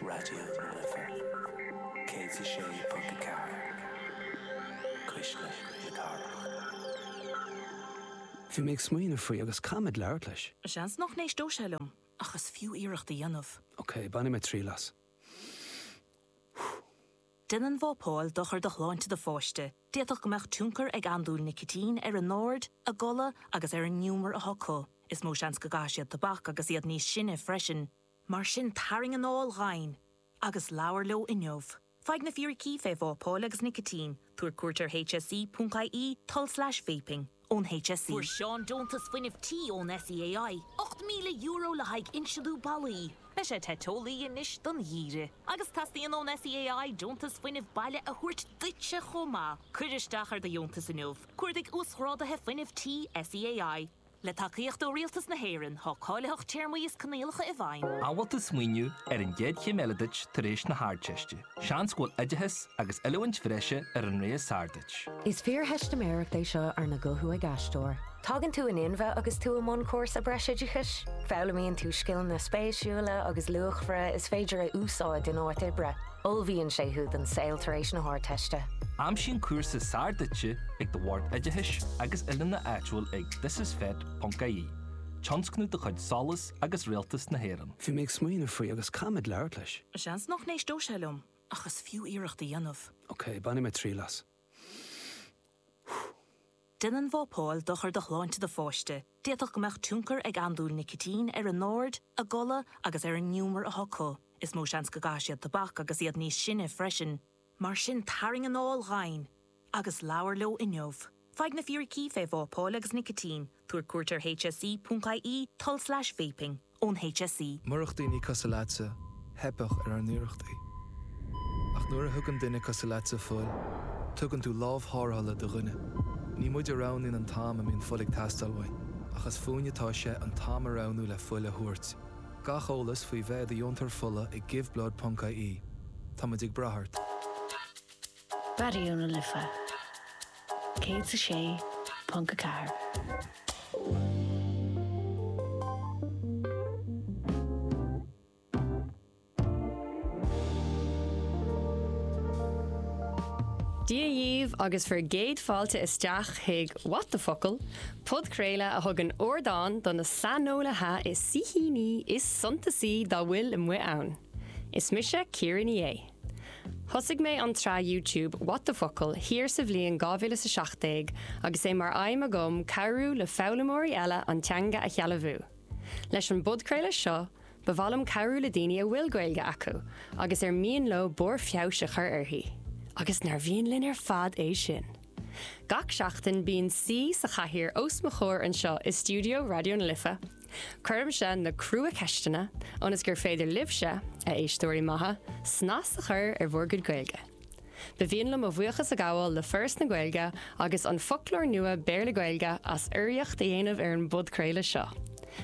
Raidió na Life 106.4, Cuisle na Cathrach. Bhí mé ag smaoineamh faoi agus caithfidh mé labhairt leis. Seans nach n-éisteodh sé liom ach is fiú iarracht a dhéanamh. Ok, bainfidh mé triail as. Déanann vápáil dochar do shláinte do pháiste, d'fhéadfadh go mbeadh tionchar ag andúil nicitín ar a n-aird, a gcodladh agus ar an ngiúmar atá acu. Is mó seans go gcaithfidh siad tobac agus iad níos sine freisin. Mar sin tarraing anáil dhomhain agus labhair leo inniu. Faigh na fíricí fé vápáil agus nicitín, tabhair cuairt ar hse.ie, tulslais vaping. ón HSE. Fuair Seán deontas fuinnimh tí ón SEAI, €8,000 le haghaidh insliú ballaí. Beidh sé te teolaí anois don gheimhreadh agus teastaíonn ón SEAI deontas fuinnimh baile a thabhairt duitse chomh maith. Cuir isteach ar do dheontas inniu, Cuardaigh Uasghráduithe Fuinnimh Tí SEAI. Le tacaíocht ó Rialtas na hÉireann, tá cáilitheacht téarmaí is coinníollacha i bhfeidhm. An bhfuil tú ag smaoineamh ar an gcéad chéim eile duit tar éis na hArdteiste. Seans go bhfuil oideachas agus oiliúint bhreise ar an rogha is fearr duit. Is fíortheistiméireacht é seo arna guthú ag aisteoir. Tagann tú in inmhe agus tú i mbun cúrsa breisoideachais. Foghlaimíonn tú scileanna spéisiúla agus luachmhara is féidir a úsáid in áit oibre. Ullmhaíonn sé thú don saol tar éis na hArdteiste. Aimsigh an cúrsa is fearr duitse ag do Bhord Oideachais agus Oiliúna áitiúil ag thisisfet.ie, tionscnamh de chuid Solas agus Rialtas na hÉireann. Bhí mé ag smaoineamh faoi agus caithfidh mé labhairt leis. Seans nach n-éisteodh sé liom ach is fiú iarracht a dhéanamh. Ok, bainfidh mé triail as. Déanann vápáil dochar do shláinte do pháiste, d'fhéadfadh go mbeadh tionchar ag andúil nicitín ar a n-aird, a gcodladh agus ar an ngiúmar atá acu. Is mó seans go gcaithfidh siad tobac agus iad níos sine freisin. Mar sin tarraing anáil dhomhain agus labhair leo inniu. Faigh na fíricí fé vápáil agus nicitín, tabhair cuairt ar hse.ie tulslais vaping, ón hse. Murach daoine cosúil leatsa, theipfeadh ar ár n-iarrachtaí. Ach nuair a thugann duine cosúil leatsa fuil, tugann tú lámh tharrthála do dhuine. Ní muid a roghnaíonn an t-am a mbíonn fuil ag teastáil uainn, ach is fúinn atá sé an t-am a roghnú le fuil a thabhairt. Gach eolas faoi bheith i do dheontóir fola ag giveblood.ie. Táimid ag brath ort! Raidió na Life 106.4. Dia dhaoibh agus bhur gcéad fáilte isteach chuig What the Focal, Podchraoladh a thugann ardán do na saineolaithe is saoithíní is suntasaí dá bhfuil amuigh ann. Is mise Ciara Ní É. Thosaigh mé an tsraith YouTube What the Focal! thiar sa bhliain 2017 agus é mar aidhm agam cabhrú le foghlaimeoirí eile an teanga a shealbhú. Leis an bpodchraoladh seo, ba mhaith liom cabhrú le daoine a bhfuil Gaeilge acu agus ar mian leo barr feabhais a chur uirthi, agus nár mhian linn ar fad é sin! Gach seachtain bíonn saoi sa chathaoir os mo chomhair anseo i stiúideo Raidió na Life. Cuirimse na crua-cheisteanna ionas gur féidir libhse, a éisteoirí maithe, snas a chur ar bhur gcuid Gaeilge. Ba mhian liom mo bhuíochas a ghabháil le Foras na Gaeilge agus an Foclóir Nua Béarla-Gaeilge as urraíocht a dhéanamh ar an bpodchraoladh seo.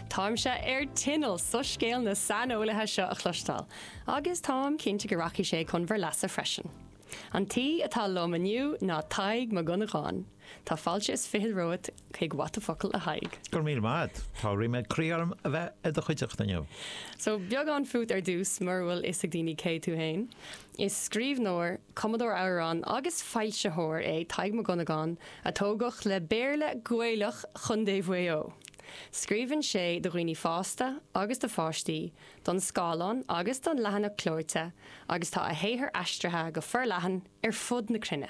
Táimse ar tinneall soiscéal na saineolaithe seo a chloisteáil agus táim cinnte go rachaidh sé chun bhur leasa freisin. An té atá liom inniu ná Tadhg Mac Dhonnagáin. Tá fáilte is fiche romhat chuig What the Focal, a Thaidhg. Go raibh míle maith a't. Tá ríméad croí orm a bheith i do chuideachta inniu. So, beagán fút ar dtús, mura bhfuil fhios ag daoine cé tú fhéin. Is scríbhneoir, cumadóir amhrán agus foilsitheoir é Tadhg Mac Dhonnagáin a tógadh le Béarla Gaelach Chondae Mhaigh Eo. Scríobhann sé do dhaoine fásta agus do pháistí, don scáileán agus don leathanach clóite agus tá a shaothar aistrithe go forleathan ar fud na cruinne.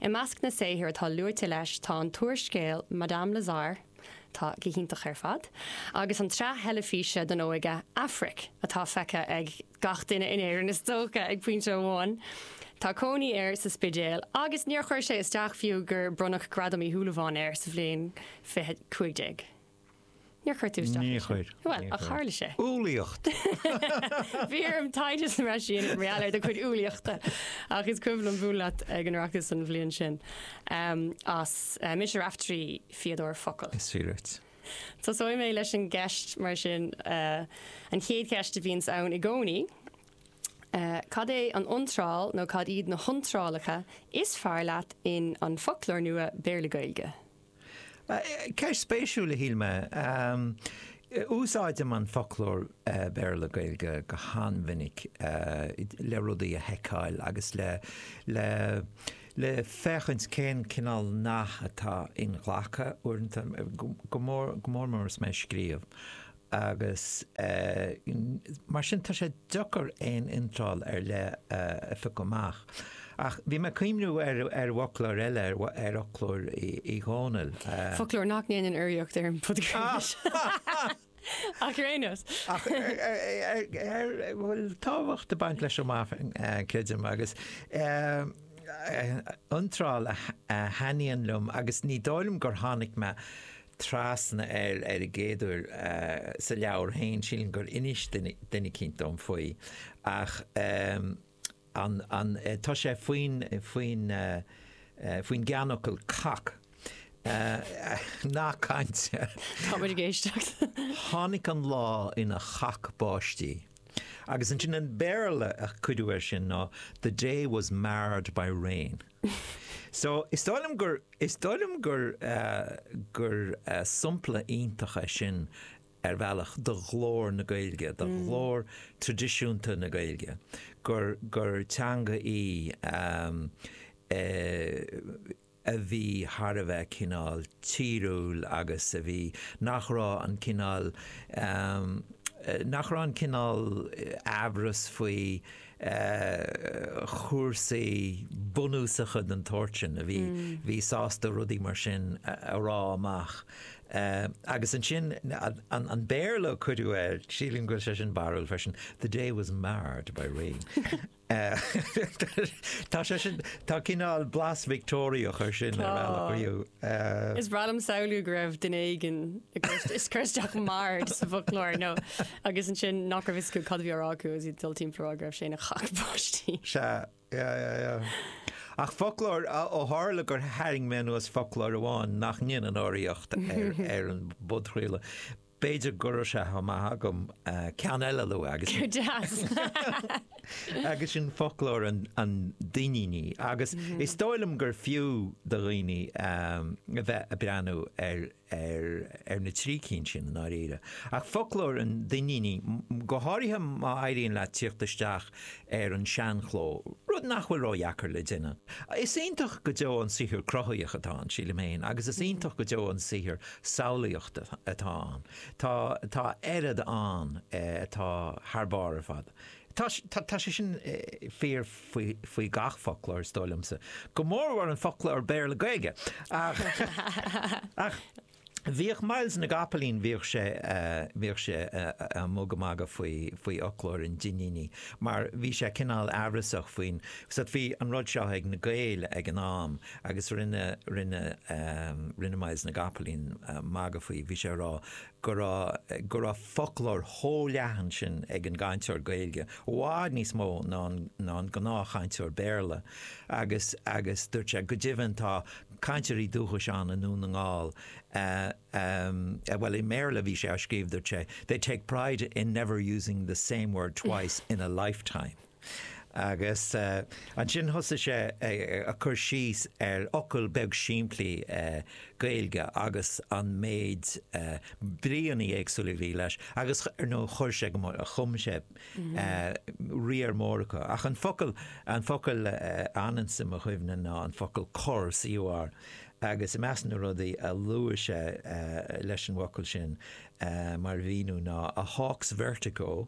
I measc na saothar atá luaite leis tá an t-úrscéal Madame Lazare, atá go hiontach ar fad, agus an tsraith theilifíse don óige Aifric, atá feicthe ag gach duine in Éirinn is dócha ag pointe amháin. Tá cónaí air sa Spidéal agus níor chuir sé isteach fiú gur bronnadh Gradam Uí Shúilleabháin air sa bhliain 2015. Níor chuir tú isteach é sin. Níor chuir. Bhuel, ach tharla sé. Umhlaíocht! Bhí orm taighde a dhéanamh ansin i ngeall ar do chuid umhlaíochta ach is cuimhin liom bualadh leat ag an Oireachtas an bhliain sin as Mise Raiftearaí, fíodóir focal. Is fíor duit. Tosóidh mé leis an gceist mar sin, an chéad cheist a bhíonns ann i gcónaí, cad é an iontráil nó cad iad na hiontrálacha is fearr leat in An Foclóir Nua Béarla-Gaeilge? Ceist spéisiúil a shíl mé. Úsáidim an foclóir Béarla Gaeilge go han-mhinic le rudaí a sheiceáil agus le féachaint cén cineál nath atá inghlactha uaireanta, go mór mór is mé ag scríobh. agus mar sin tá sé deacair aon iontráil ar leith a phiocadh amach. Ach bhí mé ag cuimhneamh ar fhoclóir eile, ar fhoclóir Uí Dhónaill. Foclóir nach ndéanann urraíocht ar an bpodchraoladh seo ar aon nós. Ach a bhfuil tábhacht ag baint leis go maith, creidim, agus iontráil a thaitníonn liom agus ní dóigh liom gur tháinig mé trasna air ar an gcéaduair sa leabhar féin, sílim gur inis duine eicínt dom faoi, ach tá sé faoin gceannfhocal cac. Nath cainte. Tá muid ag éisteacht. Tháinig an lá ina chac báistí. Agus ansin an Béarla a cuireadh air sin ná, The day was marred by rain. So, is dóigh liom gur, is dóigh liom gur, gur sompla iontach é sin ar bhealach do ghlór na Gaeilge, do ghlór traidisiúnta na Gaeilge, gur, gur teanga í a bhí thar a bheith cineál tíriúil agus a bhí, nach raibh an cineál, nach raibh an cineál amhras faoi, chúrsaí bunúsacha den tsórt sin a bhí bhí sásta rudaí mar sin a rá amach. Agus ansin an Béarla a cuireadh air, sílim go bhfuil sé sin barrúil freisin, 'The day was marred by rain'. Tá sé sin, tá cineál blas Victeoiriach air sin ar bhealach. Is breá liom samhlú go raibh duine éigin, ag cuardach 'marred' sa bhfoclóir nó. Agus ansin nach raibh fhios acu cad a bhí á rá acu agus iad ag dul timpeall a rá go raibh sé ina chac báistí. Sea, yeah, yeah, yeah. Ach foclóir, ó tharla gur tharraing mé anuas foclóir amháin nach ndéanann urraíocht ar an bpodchraoladh, b'fhéidir go raibh sé chomh maith agam ceann eile a lua agus. Go deas! Agus sin foclóir an Duinnínigh. Agus is dóigh liom gur fiú do dhaoine a bheith ag breathnú ar ar ar na trí cinn sin i ndáiríre, ach foclóir an Duinnínigh, go háirithe má éiríonn leat tíocht isteach ar an seanchló, rud nach bhfuil ródheacair le déanamh. Is iontach go deo an saothar cruthaitheach atá ann, sílim féin, agus is iontach go deo an saothar samhlaíochta atá ann. Tá tá oiread ann atá thar barr ar fad. Tá sé sin fíor faoi gach foclóir, is dóigh liomsa, go mórmhór an foclóir Béarla-Gaeilge. Ach bhíodh Myles na gCapaillín, bhíodh sé, bhíodh sé a' magadh magadh faoi, faoi fhoclóir an Duinnínigh mar bhí sé cineál amhrasach faoin, so bhí an rud seo ag na Gaeil ag an am agus rinne, rinne, rinne Myles na gCopaleen magadh faoi, bhí sé a' rá, go raibh go raibh foclóir chomh leathan sin ag an gcainteoir Gaeilge, i bhfad níos mó ná an ná an gnáthchainteoir Béarla, agus agus dúirt sé, go deimhin, tá cainteoirí dúchais ann i nDún na nGall a, a, bhuel, i mBéarla a bhí sé á scríobh, dúirt sé, they take pride in never using the same word twice in a lifetime. Agus ansin thosaigh sé ag cur síos ar fhocal beag simplí Gaeilge agus an méid bríonna éagsúla a bhí leis agus ar ndóigh chuir sé go, chum sé riar mór acu. Ach an focal, an focal a fhananns i mo chuimhne ná an focal cor, COR, agus i measc na rudaí a luaigh sé leis an bhfocal sin mar mhíniú ná, a hawk's vertigo,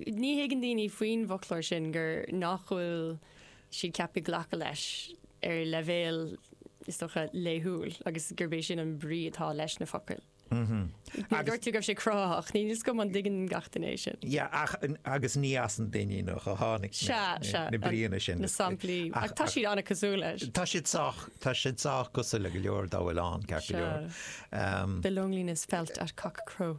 Ní thuigeann daoine faoin bhfoclóir sin gur nach bhfuil siad ceaptha glacadh leis ar leibhéal, is dócha, laethúil agus gurb é sin an brí atá leis na focail. Dúirt tú go raibh sé cruthaitheach, ní fios dom an dtuigeann gach duine é sin. Yeah, ach, agus ní as an Duinníneach a tháinig na bríonna sin. Na samplaí, ach tá siad an-chosúil leis. Tá siad sách, tá siad sách cosúil le go leor dá bhfuil ann, ceart go leor. Um, the loneliness felt at cockcrow.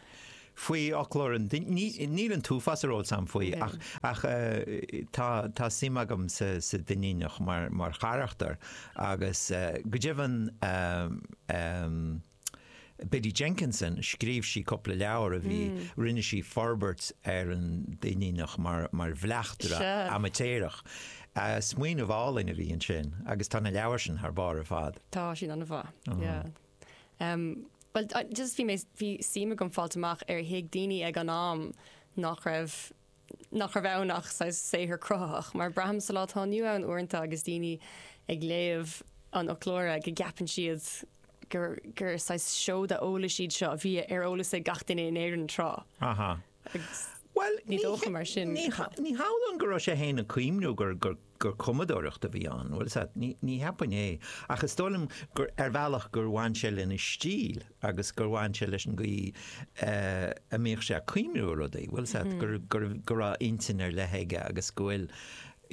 faoi fhoclóir an Duinnínigh. Níl an t-uafás ar eolas agam faoi ach tá suim agam sa Duinníneach mar charachtar agus go deimhin Biddy Jenkinson, scríobh sí cúpla leabhar a bhí, rinne sí forbairt ar an Duinníneach mar bhleachtaire amaitéarach. Smaoineamh álainn a bhí ansin agus tá na leabhair sin thar barr ar fad. Tá siad an-mhaith. Bhuel, just bhí mé, bhí suim agam fáil amach ar thuig daoine ag an am nach raibh, nach raibh ann ach saghas saothar cruthaitheach, mar braithim sa lá atá inniu ann uaireanta agus daoine ag léamh an fhoclóra go gceapann siad gur, gur saghas seoda eolais iad seo a bhí ar eolas ag gach duine in Éirinn tráth. Agus ní dócha mar sin. Ní hamhlaidh go raibh sé fhéin ag cuimhniú gur cumadóireacht a bhí ann, bhuel sea, ní cheapfainn é, ach is dóigh liom gur ar bhealach gur bhain sé lena stíl agus gur bhain sé leis an gcaoi a mbíodh sé ag cuimhniú ar rudaí, bhuel sea, go raibh intinn ar leith aige agus go bhfuil,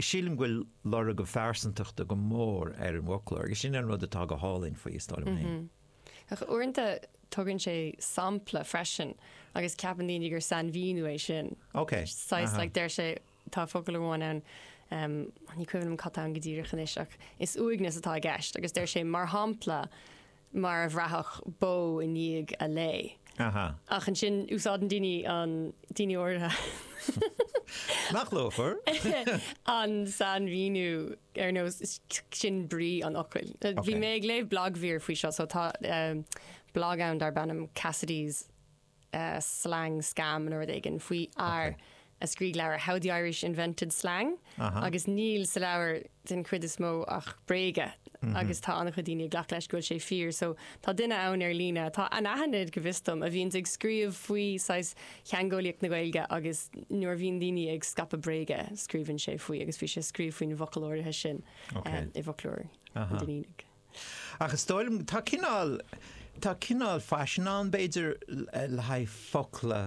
sílim go bhfuil lorg a phearsantachta go mór ar an bhfoclóir agus sin an rud atá go hálainn faoi, is dóigh liom fhéin. Ach uaireanta tugann sé sampla freisin agus ceapann daoine gur sainmhíniú é sin. Ok, saghas, like, deir sé, tá focal amháin ann, um, an ní cuimhin liom cad tá ann go díreach anois ach is uaigneas atá i gceist agus deir sé mar shampla mar a bhraithfeadh bó i ndiaidh a lao. Aha. Ach ansin úsáideann daoine an, daoine órdha, Nach luachmhar. an sainmhíniú. Ar ndóigh sin brí an fhocail. Bhí mé ag léamh blagmhír faoi seo, so tá blag ann darb ainm Cassidy's Slang Scam nó rud éigin faoi fhear a scrígh leabhar How the Irish Invented Slang agus níl sa leabhar den chuid is mó ach bréaga agus tá an-chuid daoine ag glacadh leis go bhfuil sé fíor. So tá duine ann ar líne atá anaithnid go bhfios dom a bhíonns ag scríobh faoi saghas theangeolaíocht na Gaeilge agus nuair a bhíonn daoine ag scaipeadh bréaga, scríobhann sé faoi agus bhí sé ag scríobh faoin bhfocal áirithe sin i bhfoclóir an Duinnínigh. Ach is dóigh liom, tá cineál, tá cineál faisean ann b'fhéidir le haghaidh focla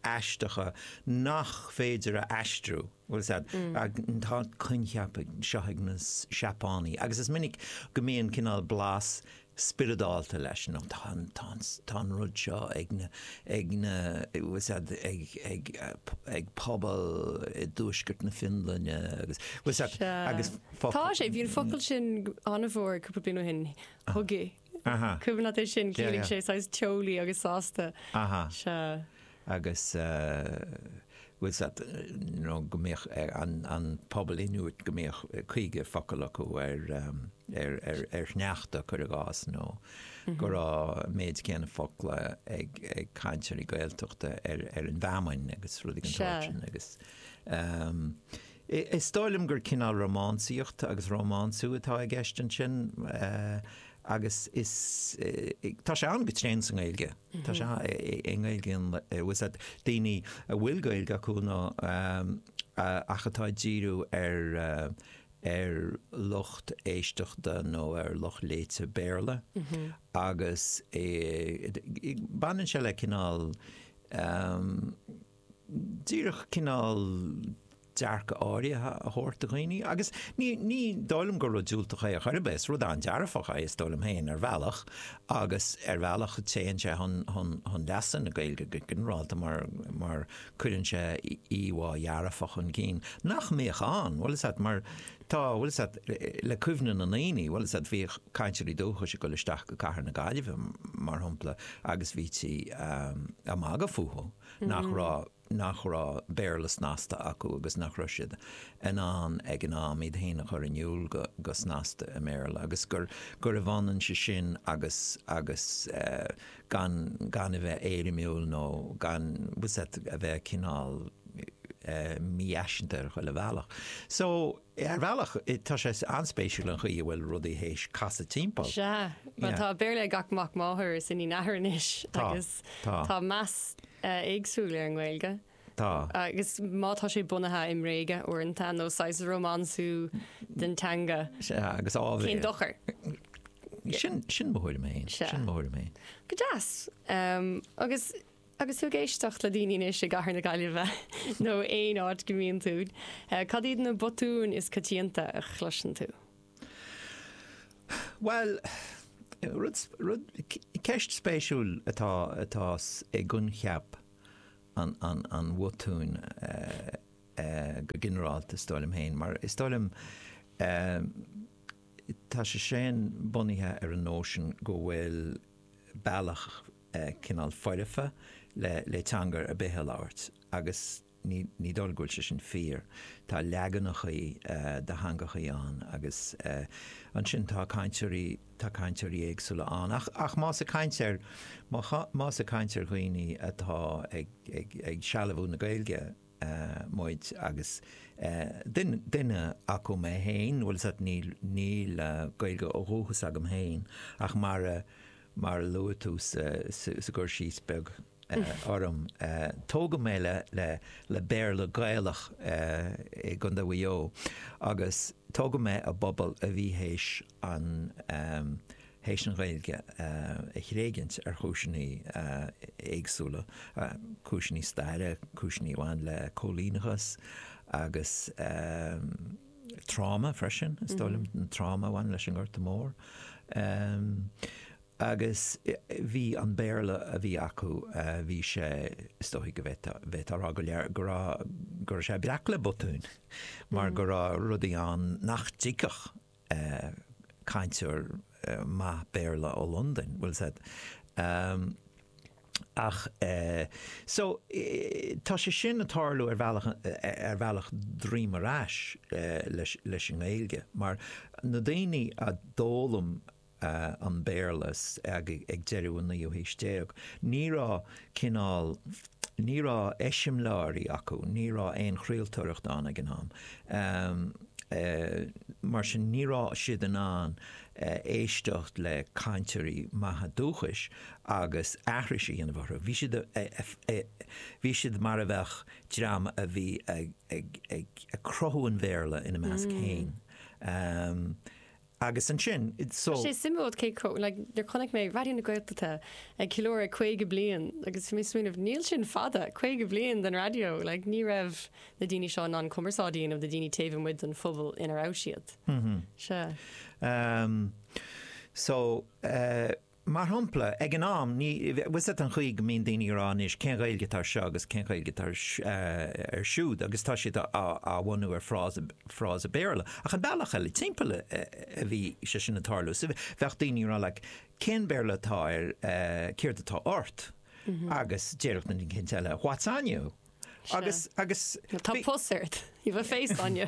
aisteacha nach féidir a aistriú, bhfuil 'fhios a'd. Tá an coincheap seo ag na Seapánaigh agus is minic go mbíonn cineál blas spioradálta leis, nó tá an rud seo ag na, bhfuil 'fhios a'd, ag pobal i dtuaisceart na Fionlainne agus, bhfuil 'fhios a'd, agus focal. Tá sé, bhí an focal sin an-mhór cúpla bliain ó shin, hygge, cuimhin leat é sin, ciallaíonn sé saghas teolaí agus sásta. Sea. agus bhfuil 'fhios a'd nó go mbeadh an pobal Inuit, go mbeadh caoga focal acu ar ar shneachta, cuir i gcás, nó go raibh an méid céanna focla ag ag cainteoirí Gaeltachta ar an bhfeamainn agus rudaí den tsórt sin agus is dóigh liom gur cineál rómánsaíocht agus rómánsú atá i gceist ansin agus tá sé ann go tréan sa nGaeilge. Tá sé sa nGaeilge ann le bhfuil 'fhios a'd daoine a bhfuil Gaeilge acu nó ach atá ag díriú ar ar lucht éisteachta nó ar lucht léite Béarla agus baineann sé le cineál díreach cineál dearcadh áirithe a thabhairt do dhaoine agus ní, ní dóigh liom gur rud diúltach é ar chor ar bith, is rud an-dearfach é is dóigh liom féin ar bhealach agus ar bhealach téann sé chun, chun, chun leasa na Gaeilge go ginearálta mar, mar cuireann sé íomhá dhearfach chun cinn nach mbíodh ann, bhfuil 'fhios a'd mar tá, bhfuil 'fhios a'd le cuimhne na ndaoine, bhfuil 'fhios a'd bhíodh cainteoirí dúchais ag dul isteach go cathair na Gaillimhe mar shampla agus bhítí ag magadh fúthu. nach raibh, nach raibh Béarla snasta acu agus nach raibh siad in ann ag an am iad féin a chur in iúl go, go snasta i mBéarla agus gur, gurbh ionann é sin agus, agus eh, gan, gan a bheith éirimiúil nó gan, bhfuil 'fhios a'd, a bheith cineál eh, mífhaiseanta ar chuile bhealach. So. Ar bhealach, tá sé an-spéisiúil an chaoi a bhfuil rudaí théis casadh timpeall. Sea. Bhuel, tá Béarla ag gach mac máthar is iníon athar anois agus tá meas éagsúil ar an nGaeilge. Tá. Agus má tá sé bunaithe i mbréaga uaireanta nó saghas rómánsú den teanga, cén dochar? Sin mo thuairim fhéin. Sin mo thuairim fhéin. Go deas. Agus. Agus tú ag éisteacht le daoine anois i gcathair na Gaillimhe nó aon áit go mbíonn tú, cad iad na botúin is coitianta a chloiseann tú? Bhuel, rud, rud, ceist spéisiúil atá, atá i gcoincheap an, an, an bhotúin go ginearálta is dóigh liom féin, mar is dóigh liom tá sé sin bunaithe ar an nóisean go bhfuil bealach, cineál foirfe le teanga ar bith a labhairt agus ní dóigh go bhfuil sé sin fíor. Tá leaganachaí de theangachaí ann agus ansin tá cainteoirí éagsúla ann. Ach más ag caint ar dhaoine atá ag sealbhú na Gaeilge, muid agus duine acu mé féin, bhfuil's agat níl Gaeilge ó dhúchas agam féin ach mar a luaigh tú sa gcur síos beag orm, tógadh mé le Béarla Gaelach i gContae Mhaigh Eo agus tógadh mé i bpobal a bhí théis an théis an Ghaeilge a thréigint ar chúiseanna éagsúla, cúiseanna staire, cúiseanna a bhain le cóilíneachas agus tráma freisin, is dóigh liom, an tráma a bhain leis an nGorta Mór. Agus bhí an Béarla a bhí acu, bhí sé, is dóigh go bhféadfá a rá go, go raibh, go raibh sé breac le botúin mar go raibh rudaí ann nach dtuigfeadh, cainteoir maith Béarla ó Londain, bhfuil's agat, em. ach eh. so tá sé sin ag tarlú ar bhealach, ar bhealach droim ar ais leis an nGaeilge, mar na daoine a d'fhoghlaim an Béarla ag deireadh an naoú haois déag, ní raibh cineál, ní raibh eiseamláirí acu, ní raibh aon chraoltóireacht ann ag an am, mar sin ní raibh siad in ann éisteacht le cainteoirí maithe dúchais agus aithris a dhéanamh orthu. Bhí siad, bhí siad mar a bheadh dream a bhí ag cruthú an Bhéarla ina measc féin. Agus ansin, so. Tá sé suimiúil cé chomh, like, nuair chonaic mé Raidió na Gaeltachta ag ceiliúradh 50 bliain agus bhí mé ag smaoineamh, níl sin fada, 50 bliain den raidió, like, ní raibh na daoine seo in ann cumarsáid a dhéanamh le daoine taobh amuigh den phobal ina raibh siad. Sea. So, eh. Mar shompla, ag an am, ní, bhfuil a fhios agat an chaoi go mbíonn daoine ag rá anois, cén Ghaeilge atá ar seo agus cén Ghaeilge atá ar, ar siúd agus tá siad á, á bhunú ar phrása, phrása Béarla. Ach an bealach eile timpeall a, a bhí sé sin ag tarlú. So bheadh daoine ag rá like, cén Béarla atá ar, céard atá ort? Agus déarfadh na cinn eile what's on you? Agus, agus, Tá bhí- pus ort. You've a face on you.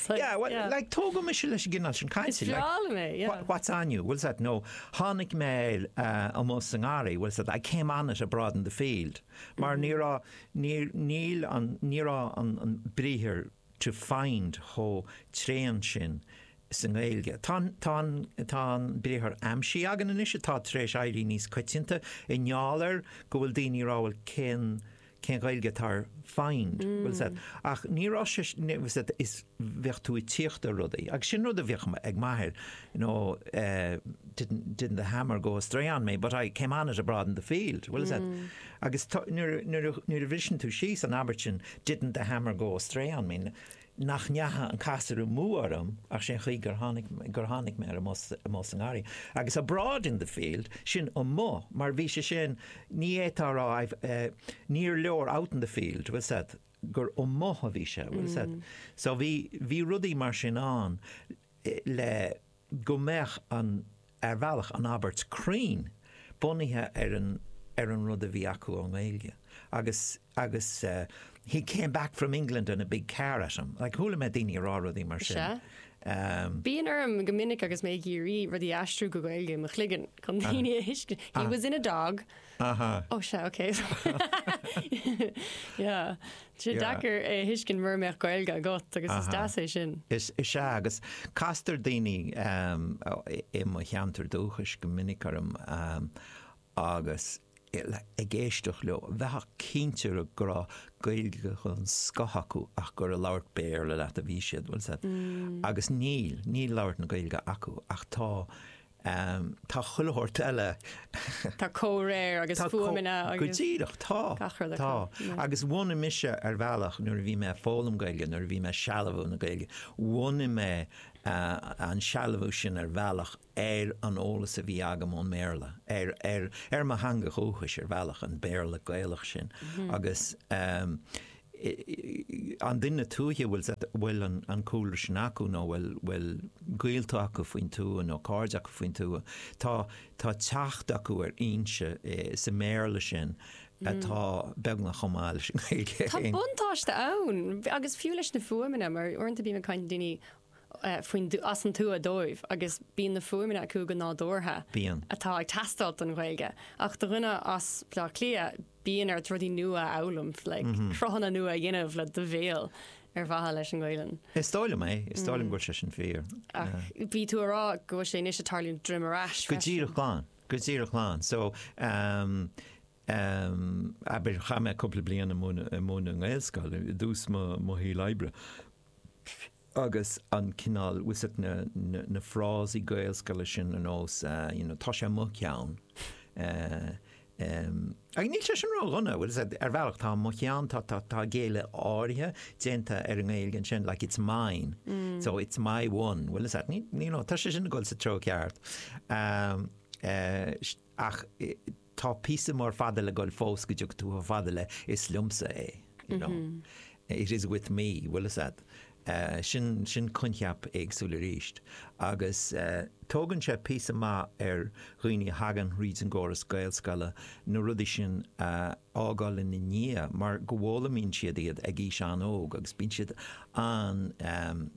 So, Yeah, well, yeah. like, tógadh mise leis an gcineál sin cainte. Is breá liom é, yeah. "Wha- What's on you? Bhfuil a fhios agat? Nó Tháinig mé air amuigh sa ngarraí. Bhfuil a fhios agat? I came on it abroad in the field. Mar ní raibh, níor, níl an, ní raibh an, an briathar to find chomh tréan sin sa nGaeilge. Tá an, tá an, tá an briathar aimsigh againn anois atá tar éis éirí níos coitianta i ngeall ar go bhfuil daoine ag rá, well, cén, cén Ghaeilge atá ar find, bhfuil a fhios agat, ach ní raibh sé sin, is bheadh tú ag tíocht ar rudaí agus sin rud a bhíodh ag m'athair you know eh didn't, didn't the hammer go astray on me but I came on it abroad in the field, bhfuil a fhios agat agus nuair a bhriseann tú síos an abairt sin didn't the hammer go astray on me, nach ndeacha an casúr amú orm ach sé'n chaoi gur tháinig, gur tháinig mé air amuigh sa, amuigh sa ngarraí. Agus abroad in the field, sin amuigh, mar bhí sé sin, ní fhéadfá a rá I've eh, níor leor out in the field, bhfuil a fhios agat, gur amuigh a bhí sé, bhfuil a fhios agat. So bhí, bhí rudaí mar sin ann le, go mbeadh an, ar bhealach, an abairt cruinn bunaithe ar an, ar an rud a bhí acu ón nGaeilge. Agus, agus eh, he came back from England in a big car at him, like chuala mé daoine ag rá rudaí mar sin. Sea. Ehm. Bíonn orm go minic agus mé ag iarraidh rudaí a aistriú go Gaeilge i mo chloigeann chun daoine a thuiscint, he was in a dog. Aha. Oh sea ok bheadh sé deacair é a thuiscint mura mbeadh Gaeilge agat agus is deas é sin. Is ea agus castar daoine i mo cheantar dúchais go minic orm agus ag éisteacht leo bheifeá cinnte go raibh Gaeilge den scoth acu ach gur ag labhairt Béarla leat a bhí siad agus níl, níl labhairt na Gaeilge acu ach tá Tá chuile shórt eile. Tá comhréir agus fuaimeanna agus. Go díreach, tá. Gach rud acu. Tá. Agus bhunaigh mise ar bhealach, nuair a bhí mé ag foghlaim Gaeilge, nuair a bhí mé ag sealbhú na Gaeilge, bhunaigh mé an sealbhú sin ar bhealach ar an eolas a bhí agam ón mBéarla, ar, ar, ar mo theanga dhúchais ar bhealach, an Béarla Gaelach sin. Agus an duine tuaithe, bhfuil an cúlra sin acu nó bhfuil gaolta acu faoin tuath nó cairde acu faoin tuath. Tá teacht acu ar fhoinse sa mBéarla sin atá beagnach chomh maith leis an nGaeilge féin. Tá buntáiste ann, agus fiú leis na fuaimeanna, mar uaireanta bím ag caint le daoine faoin as an tuath dóibh agus bíonn na fuaimeanna acu go nádúrtha Bíonn. atá ag teastáilt don Ghaeilge. Ach do dhuine as Baile Átha Cliath, bíonn ort rudaí nua a fhoghlaim, like cruthanna nua a dhéanamh le do bhéal ar mhaithe leis an nGaelainn. Is dóigh liom é, is dóigh liom go bhfuil sé sin fíor. Ach bhí tú a rá go bhfuil sé anois ag tarlú droim ar ais freisin. Go díreach glan, go díreach glan. So ehm ehm abair chaith mé cúpla bliain ag múineadh i nGaelscoil i dtús mo mo shaoil oibre, agus an cineál bhfuil a fhios agat, na frásaí Gaelscoile sin ar nós you know tá sé mo cheann agus níl sé sin ródhona, bhfuil a fhios agat, ar bhealach tá mo cheann, tá, tá, tá géilleadh áirithe déanta ar an nGaeilge ansin, like it's mine, so it's my one, bhfuil a fhios agat, you know tá sé sin ag dul sa treo ceart, ach, tá píosa mór fada le ghoil fós go dtiocfaidh tú chomh fada le is liomsa é you know it is with me bhfuil a fhios agat sin sin coincheap éagsúil arís agus tógann sé píosa maith ar dhaoine a thagann thríd an gcóras Gaelscoile na rudaí sin a fhágáil ina ndiaidh mar go bhfoghlaimíonn siad iad ag aois an-óg agus bíonn siad an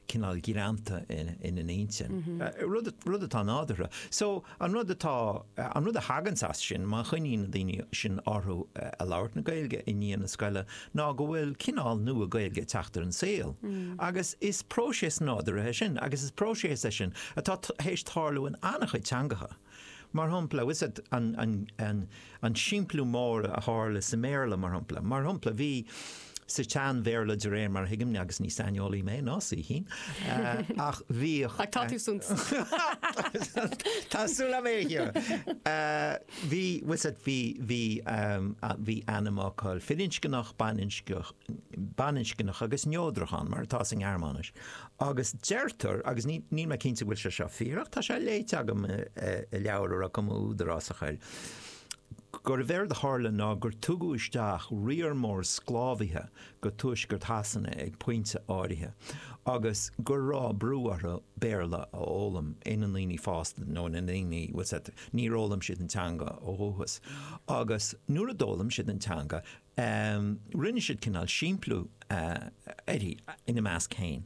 cineál greanta ina n-intinn. rud atá nádúrtha. So, an rud atá, an rud a thaganns as sin, má choinníonn na daoine sin orthu ag labhairt na Gaeilge i ndiaidh na scoile, ná go bhfuil cineál nua Gaeilge ag teacht ar an saol. Agus is próiseas nádúrtha é sin, agus is próiseas é sin atá tar éis tarlú in an-chuid teangacha. Mar shampla, bhfuil a fhios agat an simpliú mór a tharla sa mBéarla, mar shampla. Mar shampla, bhí sa tSean-Bhéarla, de réir mar a thuigim, agus ní saineolaí mé, ná saoithín, ach bhíodh. Ach tá tú san. Tá súil agam é a chíoradh. Bhí, bhfuil a fhios agat, bhí, bhí, bhí ainmfhocal firinscneach, baininscneach, baininscneach agus neodrach ann, mar atá sa nGearmáinis. agus deirtear, agus níl mé cinnte go bhfuil sé seo fíor ach tá sé léite agam i leabhar a raibh cuma údarásach air, gurbh éard a tharla ná gur tugadh isteach riar mór sclábhaithe go tuaisceart Shasana ag pointe áirithe agus go raibh brú orthu Béarla a fhoghlaim ina ndaoine fásta nó ina ndaoine, bhfuil a fhios agat, níor fhoghlaim siad an teanga ó dhúchas agus nuair a d'fhoghlaim siad an teanga, Ehm, rinne siad cineál simpliú, eh, uirthi, ina measc féin,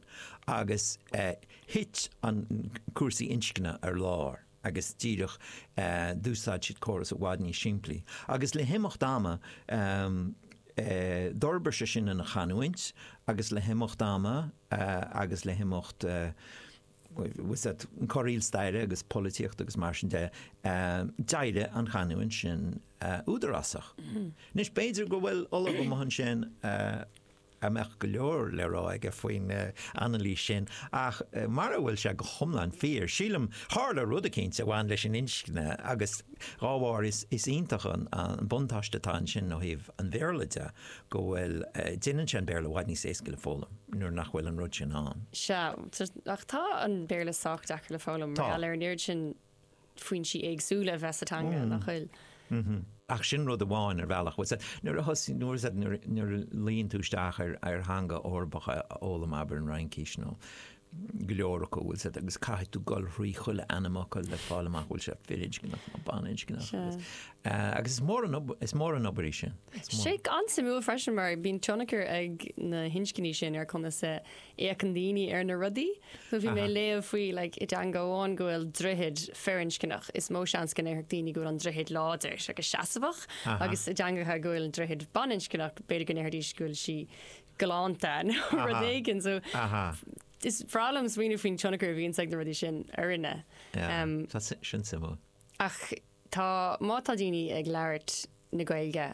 agus, eh, thit an, cúrsaí inscne ar lár agus díreach, eh, d'úsáid siad córas i bhfad níos simplí. Agus le himeacht ama, ehm, eh, d'fhorbair sé sin ina chanúint agus le himeacht ama, eh, agus le himeacht, eh, corraíl staire agus polaitíochta agus mar sin de, d'éirigh an chanúint sin údarásach. Anois, b'fhéidir go bhfuil ollamh amuigh ansin a mbeadh go leor le rá aige faoin anailís sin, ach mara bhfuil sé go hiomlán fíor, sílim, tharla rud eicínt a bhain leis an inscne agus dá bharr is iontach an buntáiste atá ansin ó thaobh an Bhéarla de. go bhfuil, déanann sé an Béarla i bhfad níos éasca le foghlaim nuair nach bhfuil an rud sin ann. Sea, ach tá an Béarla sách deacair le foghlaim mar gheall ar an oiread sin foinsí éagsúla a bheith sa teanga, nach bhfuil? Ach sin rud amháin, ar bhealach. Bhuel, sea, nuair a thosaigh, nuair, sea, nuair a luíonn tú isteach ar theanga Eorpach a fhoghlaim, abair an Fhraincís nó go leor acu, bhfuil siad, agus caithfidh tú gol thrí chuile ainm acu le fáil amach bhfuil sé firinscneach nó baninscneach agus, agus is mór an ob, is mór an obair í sin. Is sé an-suimiúil freisin mar bíonn tionchar ag na hinscní sin ar conas a fhéacann daoine ar na rudaí. So bhí mé ag léamh faoi like i dteanga amháin go bhfuil droichead firinscneach, is mó seans go ndéarfadh daoine go bhfuil an droichead láidir agus seasamhach, agus i dteangacha go bhfuil an droichead baninscneach b'fhéidir go ndéarfaidís go bhfuil sí galánta nó rud éigin. So is breá liom smaoineamh faoin tionchar a bhíonns ag na rudaí sin orainne. Tá, sin suimiúil. Ach tá, má tá daoine ag labhairt na Gaeilge